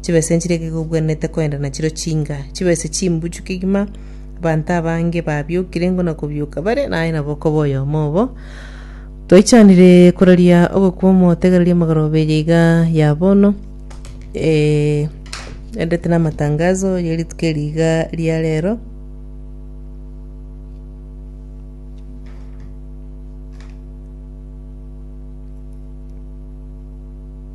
chibese nchiria ekegwi obwenerete kogenda nachiro chinga, chibese chimbuchu kegima. Abanto abange babiokire ingo na kobioka bare, na aye nabo okoba oyomo obo. Twaichanire koraria ogokwa omotegereria amagoroba eye iga ya bono, eh, erendete na amatangazo ye rituko eri iga ria rero.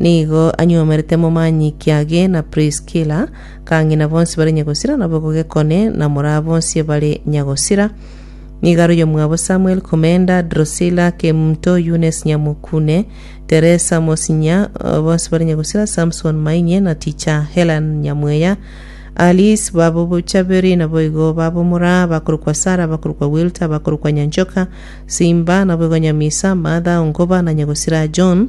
Nigo anyomerete momanyikia age na Priskila, kang'ina bonsi bare nyagosira nabo gogekone na moraa bonsi bare nyagosira. Nigo aroiyo mwabo Samuel komenda, Drusila kemunto, Yunes nyamokune, Teresa mosinya, eh, bonsi bare nyagosira, Samson mainye na ticha, Helen nyamweya, Alice babo bochabiri naboigo babo moraa, bakorokwa Sara, bakorokwa Wilta, bakorokwa Nyanchoka, Simba naboigo nyamisa, Martha, Ongoba na nyagosira John.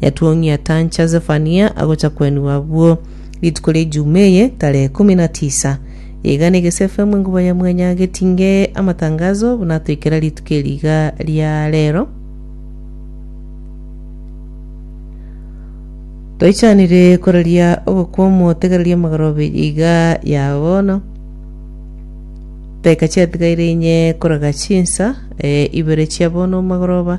Yatuong'ia atancha Zefania agocha kwenigwa abwo rituko ria Ijuma eye, tarehe ikomi na tisa. Iga negese FM enkuba ya mwanya getinge amatangazo buna atoikera rituko eri iga ria rero. Toichanire koraria ogokw'omo tegereria amagoro abiri iga ya bono. Daika chiatigaire inye koraga chinsa eh, ibere chia bono magoroba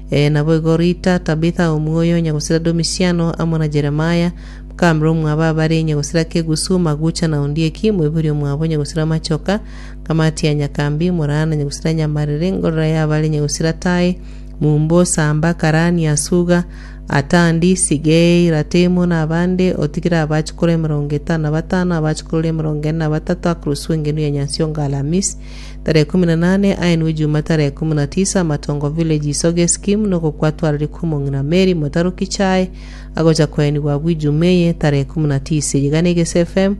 Ee, naboigo Rita, Tabitha omwoyo onye gosira Domisiano, amo na Jeremia, mokamera omwabo abare inye gosira Kegusu, Magucha na Ondieki, moibori omwabo inye gosira Machoka, Kamatia Nyakambi, Morana inye gosira Nyamarere, Ngorora y'abare inye gosira Tai, Mumbo, Samba, Karani, Asuga, Atandi, Sigei, Ratemu, na abande, otigire abachukuru emerongo etano na batano, abachukuru emerongo ene na batato, akorwa suengenu ya Nyansiongo Alamis, Tarehe kumi na nane aye nigo ijuma tarehe kumi na tisa amatongo village isoga eskimu nogokwatwarari kw'omong'ina Mary motaroki chae agocha koenigwa agwo ijuma eye tarehe kumi na tisa iga na egese FM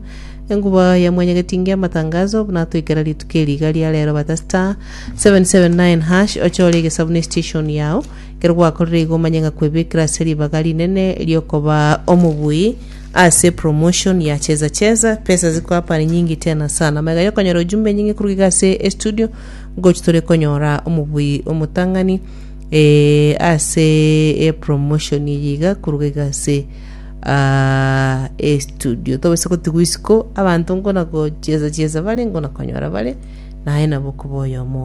enguba ya mwanyagetinge amatangazo buna toikera rituko eri iga ria rero bata star 779 hash ochore egesabu ne station yao ekero gwakorire igo omanye ng'a kwebekera ase ribaga rinene riokoba omobui ase promotion ya cheza cheza pesa ziko hapa ni nyingi tena sana mega yokonyora ujumbe nyingi kuruga iga ase estudio gochi tore konyora omobui omotang'ani eh, ase e promotion yiga kuruga iga ase ah, estudio tobase gotigwa isiko abanto nkona gocheza cheza bare nkona konyora bare naye nabo koba oyomo